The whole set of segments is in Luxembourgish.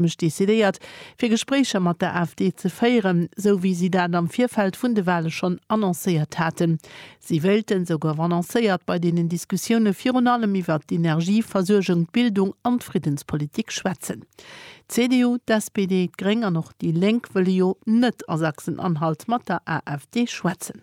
mech decidéiert, fir Gespréicher mat der AfD ze féieren, sou wéi si dat am Virfeld vun de Wahle schonn annoncéiert haten. Si wéilten, sou gouf annoncéiert, bei deenen Diskussioune virun allem iwwert d'Energieversuergung, d'Bildung an d'Friddenspolitik schwätzen. D'CDU, d'SPD, d'Gréng an och déi Lénk wëlle jo net a Sachsen-Anhalt mat der AfD schwätzen.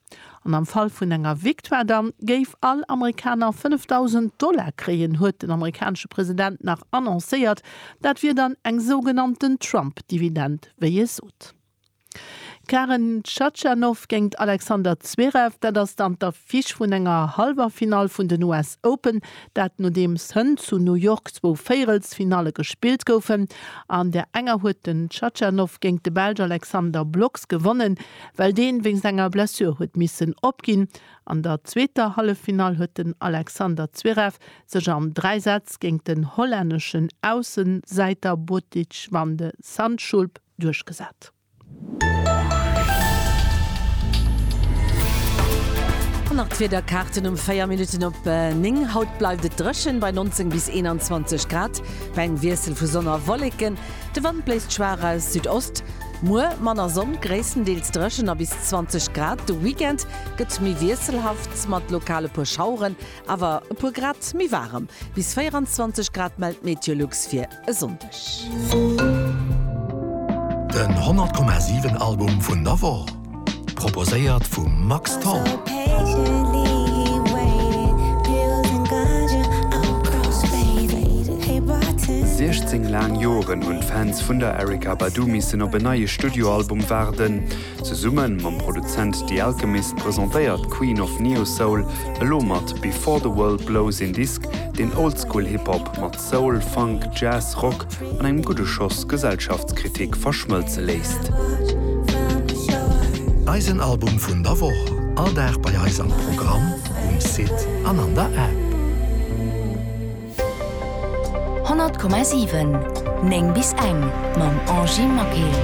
An am Fall vun enger Victoire dann géif all Amerikaner 5.000 Dollar kréien, huet den amerikanesche President nach annoncéiert. Dat wier dann eng sougenannten Trump-Dividend, wéi e sot. Karen Khachanov géingt Alexander Zverev, dat ass dann d'Affiche vun enger Hallwerfinall vun den US Open. Dat nodeems hënt zu New York zwou Véierelsfinalle gespillt goufen. An där enger huet den Khachanov géingt de Belsch Alexander Blocks gewonnen. Well deen wéinst enger Blessure huet missen opginn. An der zweeter Halleffinall huet den Alexander Zverev sech an 3 Sätz géingt den hollänneschen Aussensäiter Botic van de Zandschulp duerchgesat. An nach d'Wiederkaarten um 4 Minutten op 9. Haut bleift et dréchen bei 19 bis 21 Grad, bei engem Wiessel vu Sonn a Wolleken. De Wand bléist schwaach aus Südost. Muer manner Sonn, gréisstendeels dréchen a bis 20 Grad. De Weekend gëtt méi wiesselhaft, mat lokal e puer Schaueren, awer e puer Grad méi waarem. Bis 24 Grad mellt d'Meteolux fir e Sonndeg. Den 100,7 Album vun der Woch. Proposéiert vum Max Tholl. Siechzéng laang Joren hunn d'Fans vun der Erykah Badu missen op en neie Studioalbum waarden. Zesumme mam Produzent The Alchemist presentéiert d'Queen of Neo-Soul elo mat Before the World Blows een Disk, deen Oldschool-Hip-Hop mat Soul, Funk, Jazz, Rock an engem gudde Schoss Gesellschaftskritik verschmëlze léisst. Eisen Album vun der Woch, all Dag bei eis am Programm, um Site an an der App. 100,7, 9 bis eng, mam Angy Maquet.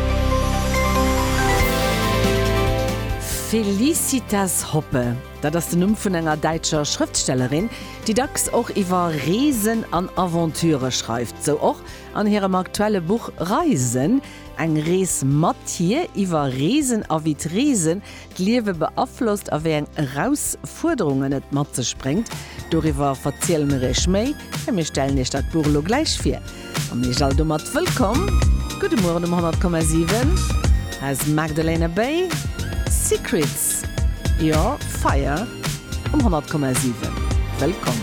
Felicitas Hoppe. Dat ass den Numm vun enger däitscher Schrëftstellerin, déi dacks och iwwer Reesen an Aventurë schreift. Esou och an hirem aktuelle Buch Reisen, eng Rees mat hir, iwwer Reesen a wéi d'Reesen d'Liewe beaflosst a wéi eng Erausfuerderungen et mat sech bréngt. Doriwwer verziele mir iech méi, mä mir stellen iech dat Buch elo gläich vir. An Iech all domat wëllkomm. Gudde Mueren um 100,7 aus Magdalena Bay. Secrets, jo, Fire um 100,7. Wëllkomm.